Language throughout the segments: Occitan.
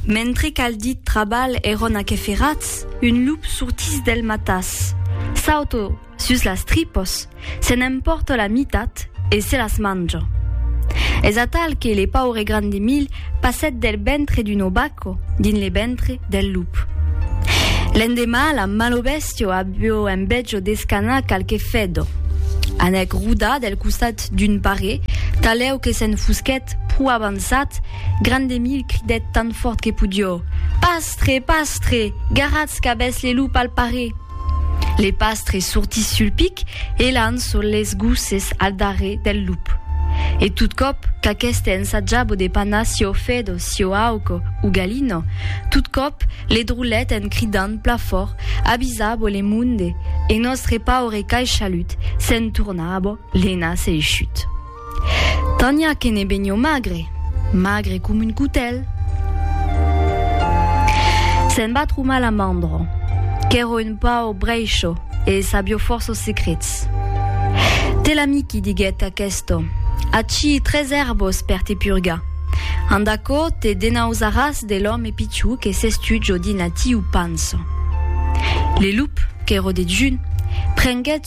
Mentre qu'al dit trabalh èron aqueferats, un lup sortís del matàs, sauto sus las tripos, se n'empòrta la mitat e se las manja. Es atal que le paure Grandemil passèt del ventre d'un obaco dins le ventre del lup. L'endemà, la malo bèstia avió envejo d'escanar qualque fedò. Anèc rodar del costat D'un parer, talèu que se'n fusquèt pro avançat, Grandemil cridèt tan fòrt que podió, Pastre! Pastre! Garatz qu'avètz le lup al parer! Le pastre sortís sul pic e lançó les gosses al darrer del lup. E tot còp qu'aqueste ensajabo de panar sieu fedo, sieu auco, o galino, tot còp le drolèt en cridant pla fòrt, Avisabo le monde! E nòstre paure caishalut se'n tornabo. Lena s'es eixut. Tania que ne benio magre, magre com un cotèl. Se'n va tromar la mandro, qu'èro un pau brèisho e sabio fòrços secrets. Te l'amiqui, diguèt aquesto, ací tres èrbos per te purgar. Ant aquò te denausaràs de l'òme pichou que s'es tu, jo dins atiu panso. Le lup, qu'èro dejun, prenguèt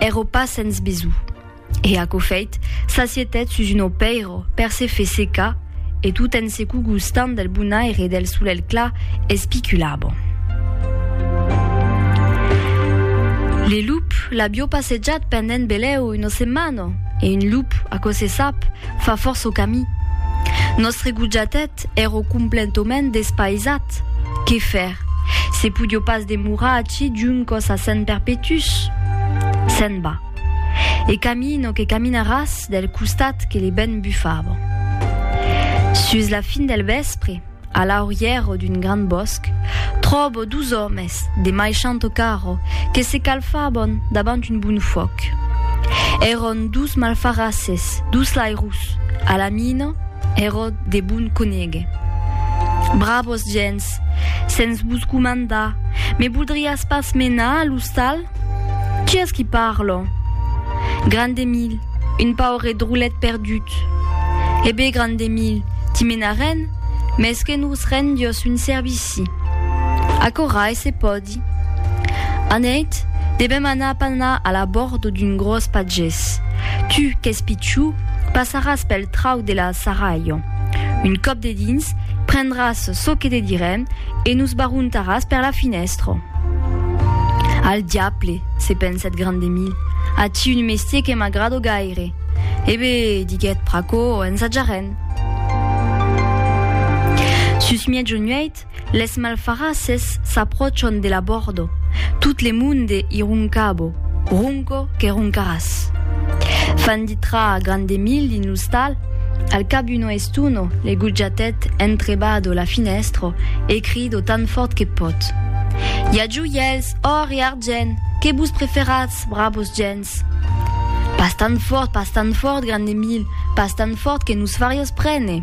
Ero pas sens besonh. E aquò feit, s'assietèt sus un opèiro per se fer secar e tot en se cogustant del bon aire del solelh clar espiculava. Le lup l'avió passejat pendent belèu una setmana e un lup, aquò se sap, fa fòrça camí. Nòstre gojatèt, Eth ero complentoment despaisat. Qué faire? Se podio pas demorar ací d'un còs a sent perpetús? Se'n va. E camino que caminaràs del costat que le vent bufava. Sus la fin del vèspre, a l'aurièro d'un gran bòsc, tròbo dus òmes de maishant carro que se calfabon davant un bon fuòc. Èron dus malfarasses, dus lairus, a la mina, Ero de bon conéguer. Bravos gents, sens vos comandar, me voldriás pas menar a l'ostal? Qui es qui parlo? Grand Emil, un paure drolet perdut. E bé, grand Emil, t'i menarén, mès que nos rendiós un servici. Aquò rai se pòdi. Anèit, devèm anar panar a la bòrd d'un gròs pagés. Tu, qu'ès pichou, passaràs pel trauc de la Sarrailho. Un còp dedins, prendràs çò que te direm e nos barrontaràs per la finèstra. Al diable, se pensèt Grandemil, aicí un mestier que m'agrado gaire. E be, diguèt Pracó, ensajarem. Sus mièg o nuèit, Les malfarasses s'apròchan de la bòrdo, tot le monde i roncabo, ronco que roncaràs. Fan ditra a grande milh dins l'ostal, al cap d'una estona le gojatèt entrebado la finèstra e crido tan fòrt que pòt, I a joièls, òr e argent, que vos preferatz, bravos gents! Pas tan fòrt, pas tan fòrt, grande milh, pas tan fòrt que nos fariás prene!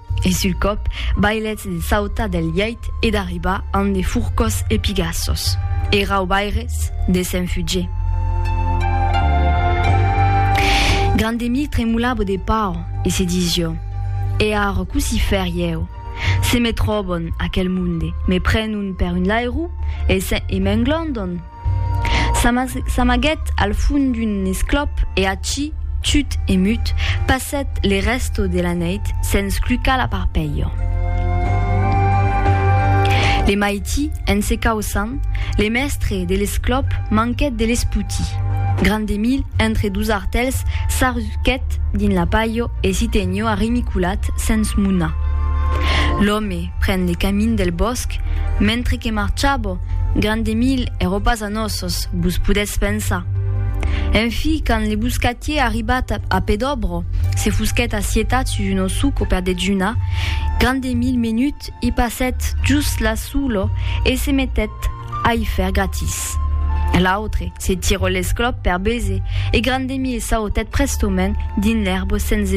E sul còp, bailètz de sautar del lièit e d'arribar amb de furcòs e pigassos. E raubaires, de se'n fugier. Grandemir tremolava de paur e se disió, E ara cossí faire ieu? Se me tròbon, aquel monde, me prenon per un lairou e m'englondon. S'amaguèt al fond d'un esclòp e ací, tut e mut, passèt le resto de la nèit sens clucar la parpelha. Le maiti, en se causant, le mèstre de l'esclòp manquèt de l'esputi. Grand Emil, entre dos artèls, s'arrusquèt dins la palha e s'i tenió arrimiculat sens munar. L'òme, Pren le camin del bòsc, mentre que marchabo, gran de mil e ropas a nossos, vos podètz pensar. En fi, quand le boscatier arribat a Pedobro, se fusquèt assietat sus un ossuco per dejunar, gran de mil menut i passèt just la sulo e se metèt a i fèr gratis. L'autre se tirò l'esclòp per bese e gran de mil s'autèt prestaument dins l'èrbo sens